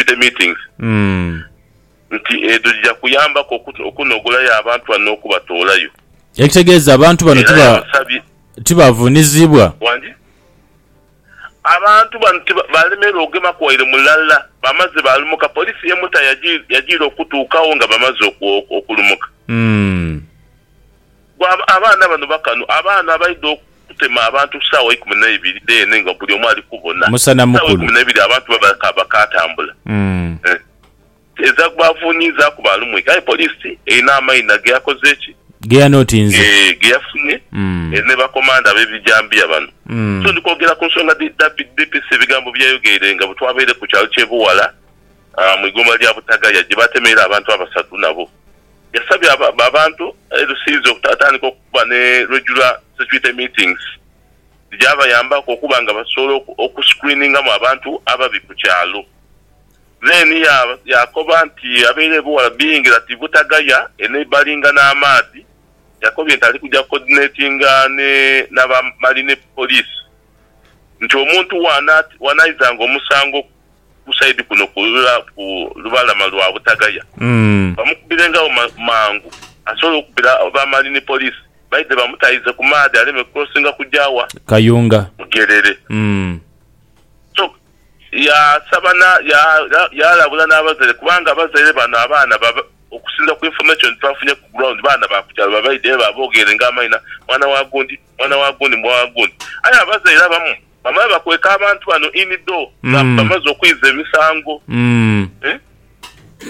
community meetings nti edho dhija kuyambaku okunogolayo abantu bano n'okubatoolayo. Ekitegeeza abantu bano tibavunizibwa? Wangi. Abantu bano balemererwa okugemaku waire mulala, bamaze balumuka, poliisi y'e Mutara yajiira okutuukawo nga bamaze okulumuka. Gwe abaana bano bakano abaana abaidha okutema abantu saawa ikumi naibiri dheene nga buli omu ali kubona. Musana Saawa mukulu. ikumi naibiri abantu baba bakaatambula. Eeh. Ezaaku baavunyiizaaku baalumwika aye poliisi erina amaina geyakoze ki? Geyanotinze. Eeh geyafunye eri ne bakomando ab'ebijambiya bano. So ndi kwogera ku nsonga dhi DPC ebigambo bye yayogeire nga bwe twabaire ku kyalo ky'e Buwala mu igombolola lya Butagaya gye baatemeire abantu abasatu nabo Yasabye abantu e Rusizi okutatandika okuba ne regular security meetings dhigyabayambaku okuba nga basobola oku screeningamu abantu ababi ku kyalo. Then yaakoba nti abaire ebughala biingira ti Butagaya e neighbouringa n'amaadhi. Yakobye nti ali kugya coordinatinga n'aba Marine Police nti omuntu w'anaizanga omusango ku. ku saidi kuno ku lubalama lwa Butagaya bamukubirenghagho mangu asobole okubira ba mali ni poliisi baidhe bamutaize ku maadhi aleme crossinga kuja wa? Kayunga. Bugerere. So yaasaba na yaalabula n'abazaire kubanga abazaire bano abaana okusinzira ku information twafunye ku ground baana ba ku kyalo babaidhe babogeere nga amaina mwana wa gundi, mwana wa gundi, mwana wa gundi aye abazaire abamu Bamala bakweka abantu bano in door nga bamaze okwiza emisango eh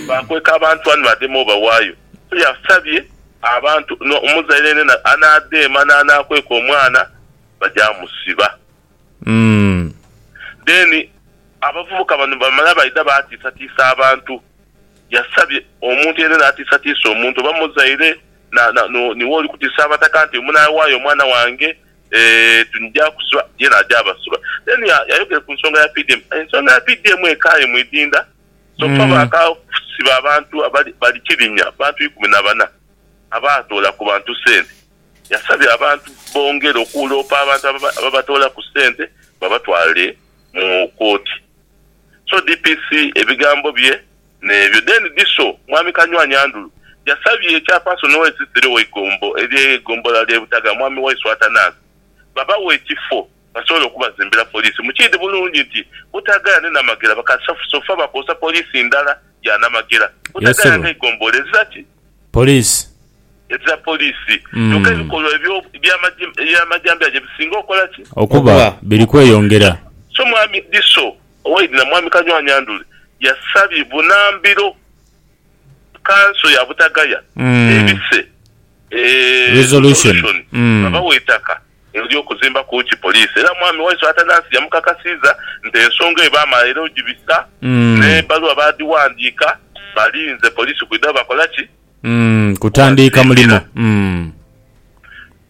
bakweka abantu bano bademe obawayo so yasabye abantu no omuzaire yenena anadema nanakweka omwana baja musiba then abavubuka bano bamala baidha batisatisa abantu yasabye omuntu yenena atisatisa omuntu oba muzaire na na niwe olikutisa abataka nti munawayo omwana wange Ndija kusiba, ye naja abasiba. Then yayogere ku nsonga ya PDM. Ensonga ya PDM eka aye mwidinda. So far bakasiba abantu abali bali kirinya, abantu ikumi na bana abaatoola ku bantu sente. Yasabye abantu bongere okuloopa abantu ababatoolaku sente babatwale mu kooti. So DPC ebigambo bye. N'ebyo deni dhiso, Mwami Kanywanyi Andulu yasabye Chairperson w'Eisisiro w'Eigombo ery'Egombola ly'e Butaga, Mwami Waisu Atanansi, babawe ekifo basobole okubazimbira poliisi. Mukiidhi bulungi nti Butagaya ni Namagera bakasaafu sofa bakozesa poliisi ndala ya Namagera. Butagaya nga Eigombola ezira ki? Poliisi. Ezira poliisi. Kyoka ebikolwa ebyo eby'amajambiya gye bisinga okola ki? Okuba biri kweyongera. So Mwami Dhiso, Owaidhi na Mwami Kanywa-Nyandule yasabye bunambiro kanso ya Butagaya ebise Resolution nga bawa eitaka ery'okuzimbaku ki poliisi era Mwami Waiswa Atanasi yamukakasiiza nti ensonga eyo baamala era ogibisa n'ebbaluwa baadhiwandiika balinze poliisi kwidha bakola ki Mm, kutandiika mulimo. Mm.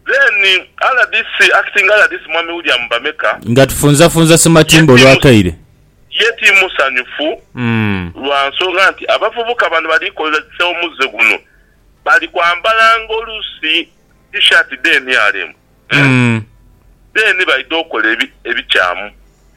Then rdc, acting rdc Mwami William Bameka, Nga tufunzafunza Sematimba olwakaire. ye ti musanyufu Mm. lwa nsonga nti abavubuka bano bali kozesa omuzze guno bali kwambalanga oluusi T-shirt dha nrm, Mm. then baidha okola ebi, ebikyamu.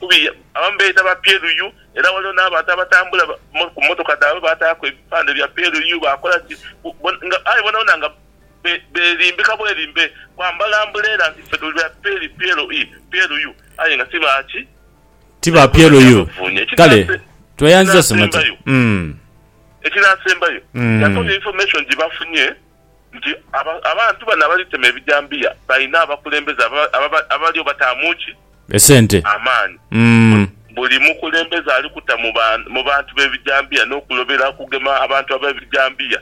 Kubi, abamu beeyita ba PLU era ghaligho n'abantu abatambula mu mmotoka dhaabwe baataaku ebipande bya PLU baakola ki nga aye bonabona nga beerimbika bwerimbe kwambala ambuleera nti ffe tuli ba PLU aye nga ti ba ki? Ti ba PLU. Kale tweyanziza Ssemate. Ekinaasembayo, yatonya infomation gye bafunye nti abantu bano abalitema ebijambiya balina abakulembeze abaliyo bataamu ki? Amaani. Buli mukulembeze ali kuta mu bantu b'ebijambiya n'okulobera okugema abantu ab'ebijambiya,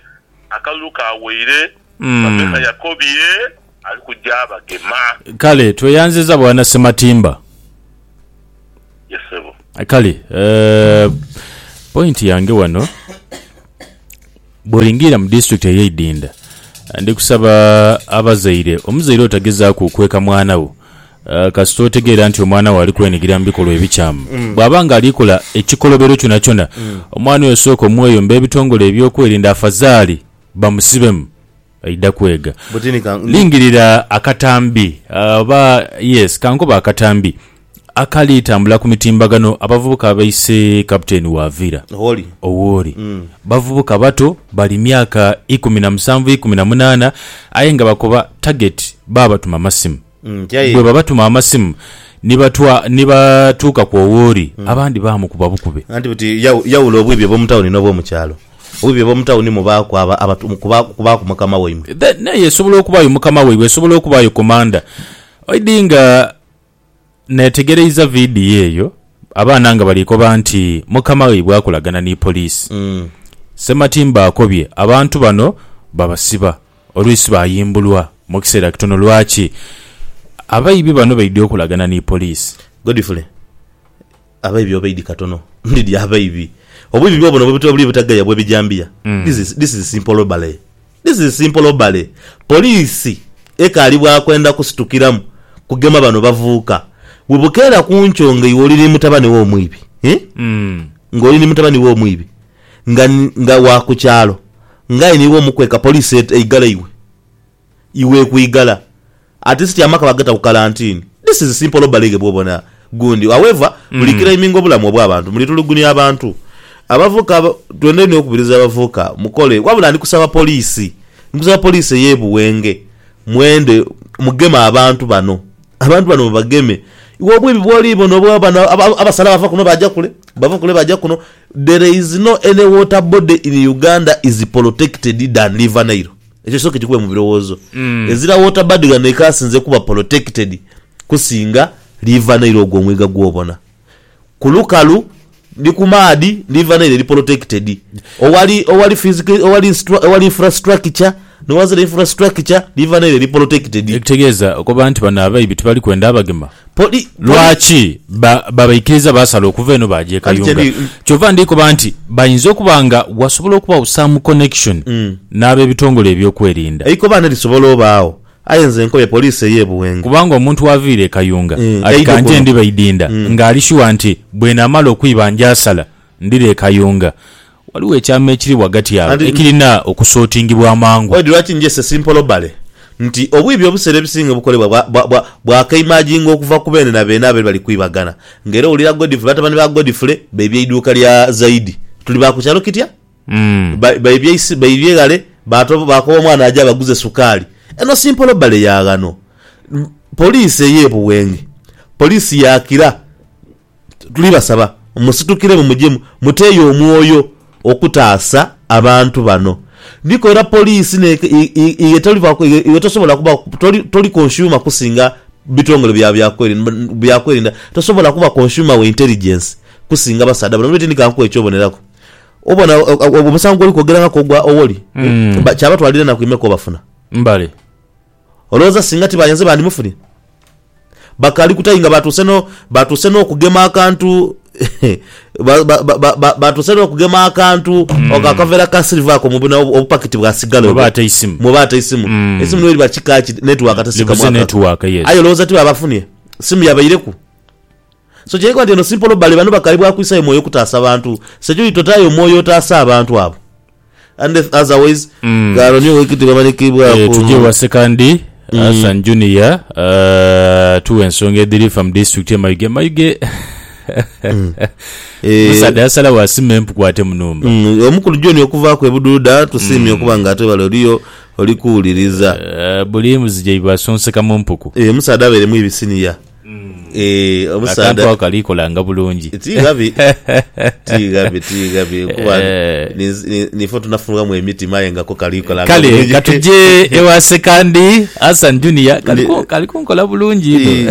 akalulu kaweire. Bameka yakobye. ali kuja abagema. Kale tweyanziza bwana Sematimba. Yes sebo. Kale uh, point yange wano bwolingiira mu district eyeidinda ndi kusaba abazaire omuzaire otagezaaku kweka mwana wo uh, kasita otegeera nti omwana wo ali kwenigira mu bikolwa ebikyamu mm. bw'aba nga alikola ekikolobero kyona kyona mm. omwana oyo sooka omweyomba ebitongole ebyokwerinda afazaali bamusibemu Aidha kwega. Buti ni ka, ndi. Lingirira akatambi, oba, yes, ka nkobe akatambi, akali tambula ku mitimbagano, abavubuka abaise Kapiteeni wa Villa. Gholi. Owoli. Bavubuka bato, bali myaka ikumi na musanvu, ikumi na munaana, aye nga bakoba tageti, baabatuma masimu. Bwe babatuma amasimu ni batuuka kw'owooli, abandi baamukuba bukube. Anti buti yawula obwiibi obw'omu tawuni n'obw'omu kyalo. Obwiibi obw'omu tawuni mubaaku abo kubaaku mukama waimwe. N'eyo esobola okubaayo mukama waibwe, esobola okubaayo komanda. Oidhi nga neetegereiza vidiyo eyo, abaana nga bali koba nti mukama waibwe akolagana ni poliisi. Sematimba akobye abantu bano babasiba. oluisi bayimbulwa mu kiseera kitono. Lwaki abaibi bano baidhi okolagana ni poliisi? Godfrey, Abaibi obaidhi katono. Ndidhi abaibi. Obwibi bwobuno bwebutera obuli obutagaya bwebijambiya. This is, this is simple robbery. This is simple robbery. Poliisi ekaali bwa kwenda kusitukiramu kugema bano bavuuka. Bwebukeera ku nkyo nga iwe oli ni mutabani wo omwibi, eeh, nga oli ni mutabani wo omwibi, nga nga wa ku kyalo nga aye niiwe omukweka poliisi et eigala iwe iwe ekwigala at least amaka bagata ku kalantini this is simple robbery ghe bwobona gundi however buli claiminga obulamu obwa bantu muli tulugunia abantu abavuka aba twendha inho okubiriza abavuka mukole wabula ndi kusaba poliisi ndi kusaba poliisi eye Buwenge mwende mugeme abantu bano Abantu bano mubageme. Iwe obwibi bwoli bona obwo bano abasala bava kuno baja kule bava kule baja kuno there is no any water body in Uganda is protected than river Nile ekyo kisoke kikube mubirowozo ezira water body ghano ekasinze kuba protected kusinga river Nile ogwo omwiga gwobona. Ku lukalu ni ku maadhi liva n'eira eri polotekitedi. Owali, owali fizika, owali, owali infrastructure, ni ghansi ere infrastructure liva n'eira eri polotekitedi. Ekitegeeza okoba nti bano abaibi tibali kwenda abagema? Poli, poli. Lwaki ba, babaikiriza baasala okuva eno baaja e Anti Kayunga? kyendi. Kyova ndi koba nti bainza okuba nga wasobola okubagho some connection n'abebitongole ebyokwerinda. Eikobaane lisobola obaagho Aye nze nkobye poliisi ey'e Buwenge. Kubanga omuntu waviira e Kayunga ati ka nje ndi Baidinda ng'ali shuwa nti bwenamala okwiba njaasala ndire e Kayunga. Waliwo ekyama ekiri ghagati agho ekirina okusootingibwa amangu. Oidhi lwaki nje Sir Simpolobale nti obwibi obuseera ebisinga obukolebwa bwakeimaginga okuva ku beene na beene abaire bali kwibagana. Ng'era owulira Godfrey batabani ba Godfrey baibye eiduuka lya Zaidi. Tuli ba ku kyalo kitya? Ba, baibye eisi, baibye ghale, baatoba, baakoba omwana aje abaguze sukaali. Eno si mpolobale ya ghano. Poliisi ey'e Buwenge, poliisi ya Kira, tuli basaba musitukiremu muje mu, muteeyo omwoyo okutaasa abantu bano. Nikwo era poliisi ne, i, i, iwe tolivaku, iwe, iwe tosobola kuba, toli, toli consumer kusinga bitongole bya, bya kweri, bya kwerinda. Tosobola kuba consumer wa intelligence kusinga basaadha bano. Bwire ti ndi ka nkuwe eky'oboneraku. Obona omusango gwoli kwogerangaku ogwa Owori kyabatwalira enaku imeka obafuna? Mbale. Olowooza singa ti bayenze bandimufunye? Bakaali kuta inga batuuse no batuuse n'okugema akantu batuuse n'okugema akantu mm. akaveera ka silver ako mubuna obupakiti bwa sigala oba ate isimu muba ate isimu mm. isimu niyo liba kika ki network ate sika mwaka ayo olowooza ti babafunye simu yabaireku So kyenkana nti eno si mpolo bale bano bakaibwaku isayo mwoyo kutaasa bantu security totayo omwoyo otaase abantu abo unless otherwise gaaro niyo wekiti bwebalekeibwaku Eh, tuje ewa sekandi Hassan Junior eh, tuwe ensonga edhiri fa mu district ye Mayuge Mayuge Eh, omusaadha yasalawo asime empuku ate munumba mm, omukulu John okuvaaku ebuduuda tusiimye okuba nga ate wale oliyo oli kuwuliriza Eh, buli mbuzi gyaibwe asonseka mu mpuku Eh, omusaadha abeeremu ebisiniya Eeh omusaadha akantu ako kali kolanga bulungi tighabi tighabi tighabi kuba nifo tunafunwamu emitima aye nga ko kali kolanga kale katuje ewa sekandi Hassan Junior kali kunkola bulungi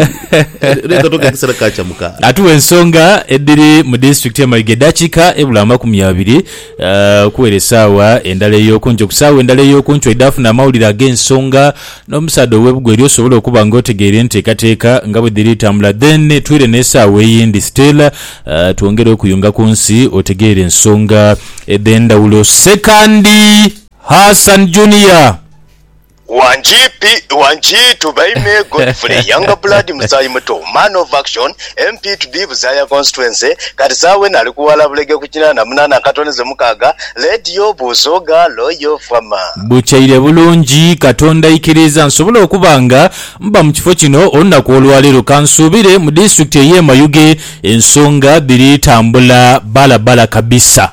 atuwa ensonga edhiri mu disitulikiti ye Mayiga edhakika ebula amakumi abiri okuwera esaawa endala eyokunkyo ku saawa endala eyokunkyo edhafuna amawulire agensonga N'omusaadha ow'ebugwa elyo osobole okuba nga otegeire enteekateeka nga bwe dhiri tambula. Then twire n'esaawa eyindi Stella twongere okuyunga ku nsi otegeere ensonga edh'endhawulo. Sekandi Hassan Junior. Wangi P Wangi Tubaime Godfrey Youngblood Musaayi Muto Man of Action MP to be Buzaaya Constituency, kati Saawen ali ku ghala bulege ku kinaana munaana akatoneze mukaaga, Led yo buuzo gaalo yo fama. Bukyaire bulungi, Katonda aikiriiza nsobole okuba nga mba mu kifo kino olunaku olwaleero. Kansuubire mu disitulikiti ey'e Mayuge ensonga dhiri tambula bbalabala kabisa.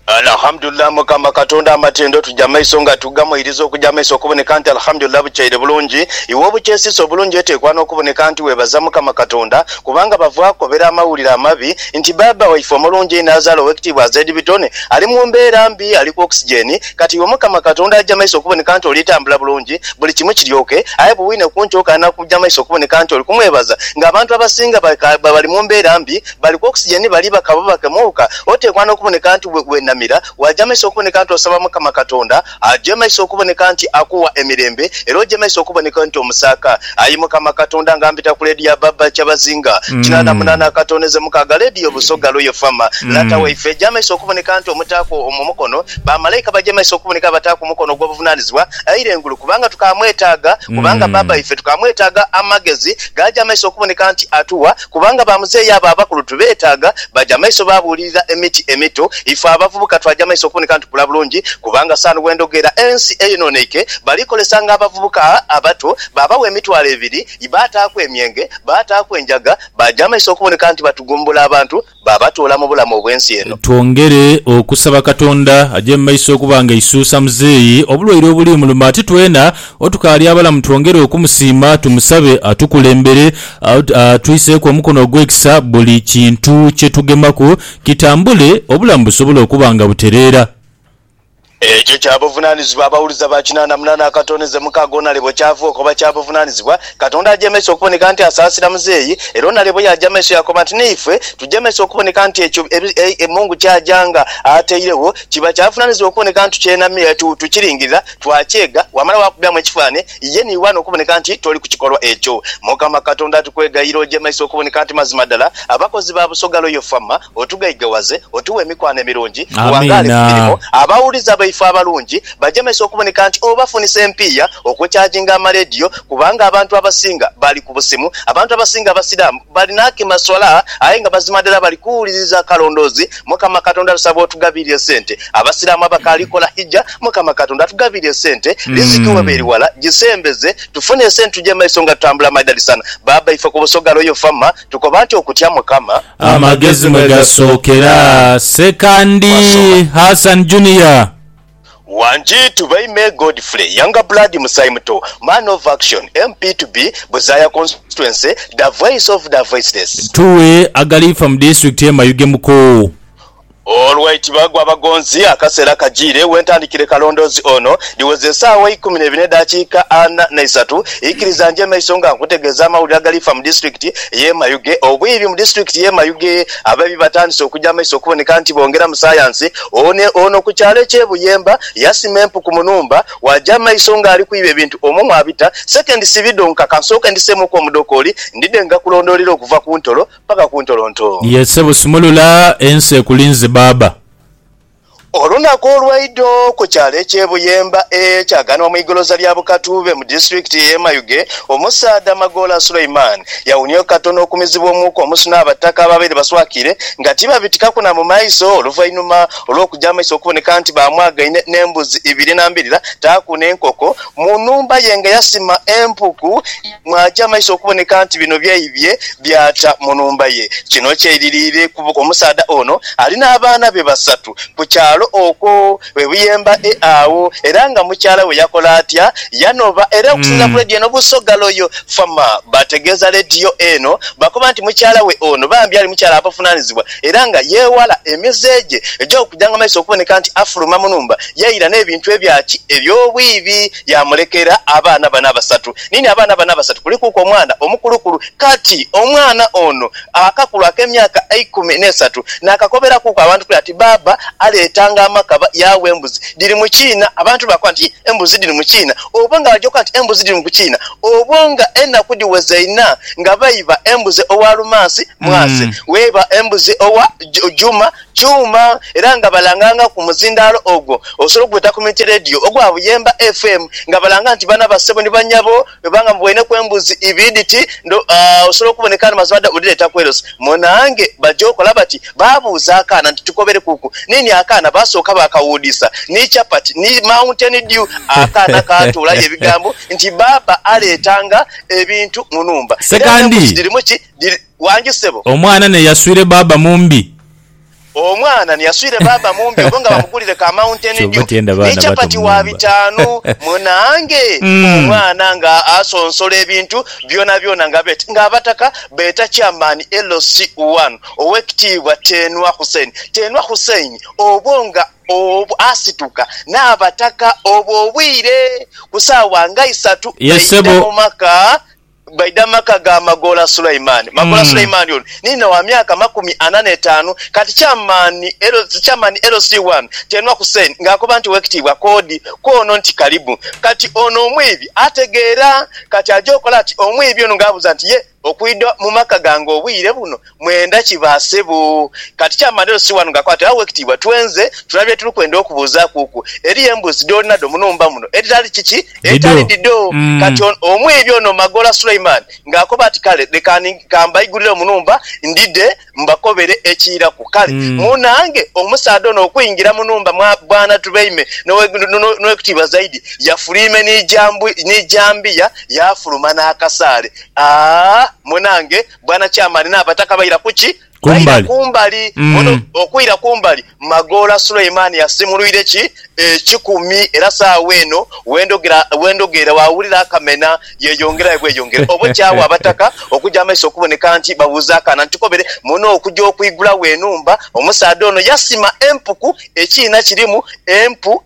Alhamdulillah mukama katonda amatendo tuja maiso nga tugamoiriza okuja maiso okuboneka nti Alhamdulillah bukyaire bulungi iwe obukyesisa obulungi etekwa nokuboneka nti webaza mukama katonda kubanga bava kobera amawulire amabi nti baaba waife omulungi einho azaala owekitiibwa Azed Bitone ali mumbera mbi ali ku oxygen kati iwe mukama katonda aja maiso okuboneka nti oli tambula bulungi buli kimu kiryoke aye buwine kunkyoka nakuja maiso okuboneka nti oli kumwebaza nga abantu abasinga bali mumbera mbi Bali ku oxygen bali baka bubake muuka. Oteekwa n'okuboneka nti weenamira, waajemeisa okuboneka nti osaba Mukama Katonda ajemeise okuboneka nti akuwa emirembe era ojemeise okuboneka nti omusaaka. Ayi Mukama Katonda nga mpita ku leediyo Ababa Kyabazinga kinaana munaana akatooneze mukaaga, leediyo Busoga Royal Fama, Lata waife ejemeise okuboneka nti omutaaku omukono, bamalaika bajemeise okuboneka abataaku omukono ogw'obuvunaanizibwa aire engulu kubanga tukaamwetaaga, kubanga Baba waife tukaamwetaaga amagezi gaajemeise okuboneka nti atuwa. Kubanga ba muzeeyi abo abakulu tubeetaaga. Baja maiso baabuulirira emiti emito. Ife abavubuka twaja maiso okuboneka nti tukula bulungi. Kubanga saanu bwe ndhogera ensi eyonooneike, bali kozesanga abavubuka abato, baabawa emitwalo ebiri, baataaku emyenge, baataaku enjaga, baja maiso okuboneka nti batugumbula abantu. baabatuula mu bulamu obw'ensi eno. Twongere okusaba Katonda aje mu maiso okuba nga aisuusa muzeeyi obulwaire obuli muluma ate twena otukaali abalamu twongere okumusiima tumusabe atukulembere atwiiseeku omukono ogw'ekisa buli kintu kye tugemaku kitambule obulamu busobole okuba nga butereera. Ekyo kya buvunanizibwa abawuliza ba kinaana munaana akatooneze mukaaga onale bwe kyaavuuka oba kya buvunanizibwa. Katonda ajemeisa okuboneka nti asaasira muzeeyi, era onale bwe yaaja maiso yaakoba nti n'eife tujemeisa okuboneka nti ekyo e Mungu ky'aja nga atairegho kiba kyavunanizibwa okuboneka nti tukyenamira, tukiringirira, twakyega, wamala waakubyamu ekifaananie. Ye ni wano okuboneka nti toli ku kikolwa ekyo. Mukama Katonda atukwegayira oje maiso okuboneka nti mazima dala abakozi ba Busoga Royal Fama. Otughaigawaze, otuwe emikwano emirungi, tuwangaale ku Amiina. mirimo. Abawuliza baife abalungi baje maiso okuboneka nti obafunisa empiiya okukyajinga amalediyo kubanga abantu abasinga bali ku busimu. Abantu abasinga Abasiraamu bali n'akemaswala aye nga mazima dala bali kuwuliriza akalondoozi. Mukama Katonda tusaba otugabirire sente Abasiramu abakaali kola Hijja, Mukama Katonda atugabiire esente, riziki weba eri wala, gisembeze tufune esente tuje mumaiso nga tutambula madalisana. Baaba ife ku Busoga Royal Fama tukoba nti okutya Mukama. Amagezi mwe gasookera. Ssekandi Wasoma. Hassan Junior. Wangi to bay me Godfrey younger blood musaayi muto man of action MP to be Buzaaya constituency da voice of da voiceless. Tuwe agaliifa mu disitulikiti ye Mayuge Muko. Olwaiti bagwa abagonzi, akaseera kajiire wentandikire kalondoozi ono. Dhiweze esaawa eikumi neibiri n'edaakiika ana naisatu, ikiriza nje maiso nga nkutegeeza amawulire agalifa mu disitulikiti y'e Mayuge. Obwiibi mu disitulikiti y'e Mayuge, abeebi batandise okuja maiso okuboneka nti bongera mu sayansi. One ono ku kyalo eky'e Buyemba yasima empuku mu numba, waja maiso nga ali kwiiba ebintu omwo mwabita sekendi sibi dhonka. Kansooke ndiseemuuku omudokooli ndidhe nga kulondoolera okuva ku ntolo. paka ku ntolontoo. Ye ssebo sumulula ensi ekulinze baaba. Olunaku olwaidho ku kyalo ekye Buyemba e Kyaganwa mu igoloza lya Bukatuube mu disitulikiti ye Mayuge, omusaadha Magoola Sulaiman yawunieo katono okumizibwa omuuka omusu n'abataka ababaire baswakire nga tibabitikaku na mu maiso oluvainuma olw'okuja amaiso okuboneka nti bamwagaine n'embuzi ibiri na mbirira taaku n'enkoko mu nhumba ye nga yasima empuku Mwaaja amaiso okuboneka nti bino byaibye byata mu nhumba ye. Kino kyeiririire kuba omusaadha ono ali n'abaana be basatu ku kyalo okwo e Buyemba e agho era nga mukyala we yakola atya? Yanoba era okusinzira ku leediyo eno Busoga Loyal Farmer baategeeza leediyo eno bakoba nti mukyala we ono bambi ali mukyala atavunaanizibwa era nga yeewala emize gye egy'okujanga amaiso okuboneka nti afuluma mu nhumba yaira n'ebintu ebya ki? eby'obwiibi. yaamulekera abaana bano abasatu. Niini abaana bano abasatu kulikuku omwana omukulukulu. Kati omwana ono akakulu ak'emyaka eikumi n'esatu naakakoberakuku abantu kule ati, Bbaabba aleetanga amakaba yaawa embuzi dhiri mu kiina. Abantu baakoba nti, Yii, embuzi dhiri mu kiina? Obwo nga baja okukoba nti embuzi dhiri mu kiina, obwo nga enaku dhiweze inha nga baiba embuzi owa Lumansi, Mwase, waiba embuzi owa Juma, Kyuma era nga balanganga ku muzindaalo ogwo osobola okugweta Community Radio ogwa Buyemba FM nga balanga nti bano abassebo ni banyabo bweba nga muboineku embuzi ibiri dhiti ndo aah osobola okuboneka ni mazima dda odhireeta ku LC munange baja okola bati babuuza akaana nti tukoberekuku nini akaana baasooka baakawuudisa ni chapati ni mountain dew akaana kaatoolayo ebigambo nti baaba aleetanga ebintu mu numba era n'embuzi Ssekandi. dhirimu ki dhiri Wangi sebo. Omwana ni yaswire baaba mumbi. Omwana ni yaswire baaba mumbi obo nga bamugulire ka mountain dew ni chapati wa bitaanu munange omwana nga asonsola ebintu byonabyona nga bet nga abataka beeta chairman LC one owekitiibwa Tenwa Hussein Tenwa Hussein obo nga obo asituka n'abataka obwo obwire ku saawa nga isatu baidha mu maka Baidha mu maka ga Magoola Sulaiman. Magoola Sulaiman ono ni inha wa myaka makumi ana n'etaanu. Kati Chairman Chairman LC wano Tenwa Hussein nga akoba nti Owekitiibwa Koodi kwono nti kalibu. Kati ono omwiibi ategeera. Kati aja okola ati omwiibi ono nga abuuza nti ye okwidha mu maka gange obwire buno Mwenda ki ba sebo? Kati kya manelo si wanu gakwate awo wekitiibwa twenze tuna bye tuli kwenda okubuuzakuuku. Eliyo embuzi doli nado munumba muno edhitali kiki? Edhitali dhidho. Kati ono omwiibi ono Magoola Sulaiman nga akoba ati kale leka kambaigulile munumba ndidhe mbakobele ekiiraku. Kale munange omusaadha ono okuingila munumba mwa bwana Tubeime N'owekitiibwa Zaidi yafuliime ni jambiya yafuluma nakasaale. Aah munange. Bwana Chairman n'abataka baira kuki? Baira kumbali. Ono okwira kumbali, Magoola Suleiman yasimulwire ki? Ekikumi era saagho eno wendhogera waawulira akamena yeyongera aye bweyongera obo kyagho abataka okuja amaiso okuboneka nti babuuza akaana nti kobere muno okuja okwigulagho enhumba omusaadha ono yasima empuku ekiina kirimu empu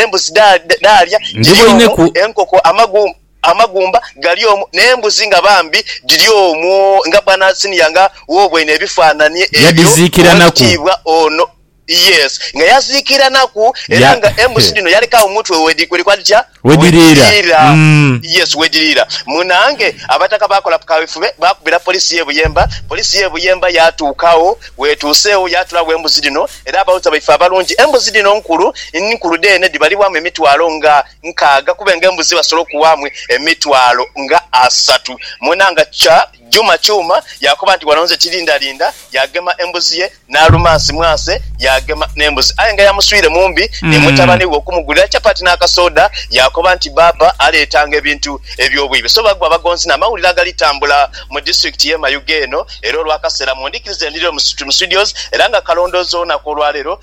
embuzi daalya, giri omwo enkoko amagumba. Amagumba gali omwo, n'embuzi nga bambi dhiri omwo, nga bwana Senior nga w'obweine ebifaananie ebyo, Yadhiziikiranaku. Ow'ekitiibwa ono, yes, nga yaziikiranaku, era Ya, nga embuzi he. dhino yaleka omutwe we dhi, wedhikola dhitya? Wedhiriira. Wedhiriira. Mm. Yes, wedhiriira. Munaange, abataka baakola kaweefube, baakubira poliisi y'e Buyemba, poliisi y'e Buyemba yaatuuka agho, bw'etuuse agho yaatula agho embuzi dhino, era abawuliza baife abalungi, embuzi dhino nkulu, nkulu dheene, dhibalibwamu emitwalo nga. nkaaga kube nga embuzi basobola okuwaamu emitwalo nga asatu mwena nga kya juma kyuma yaakoba nti wano nze tirindarinda yaagema embuzi ye n'alumansi mwase yaagema n'embuzi aye nga yamuswiire mu mbi ni mutabani we okumugulira chapati n'akasooda yaakoba nti bbaabba aleetanga ebintu eby'obwiibe so bagwa bagonzi n'amawulire agalitambula mu disitulikiti y'e Mayuge eno era olw'akaseera mundikirize ndhirire mu studios era nga kalondoozi olunaku olwaleero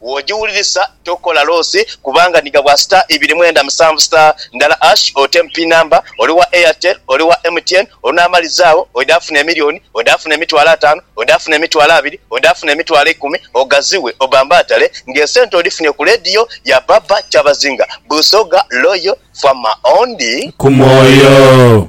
Bw'ogiwulirisa tokola loosi kubanga ni ghabwa star ibiri mwenda musanvu star ndala ash oteemu pin number. Oli wa Airtel, oli wa MTN, onaamaliza agho oidha funa emilioni, oidha funa emitwalo ataanu, oidha funa emitwalo abiri, oidha funa emitwalo eikumi ogaziwe obambaatale ng'esente odhifunye ku leediyo ya Baba Kyabazinga, Busoga Loyal Farmer. Ondi. Ku mwoyo.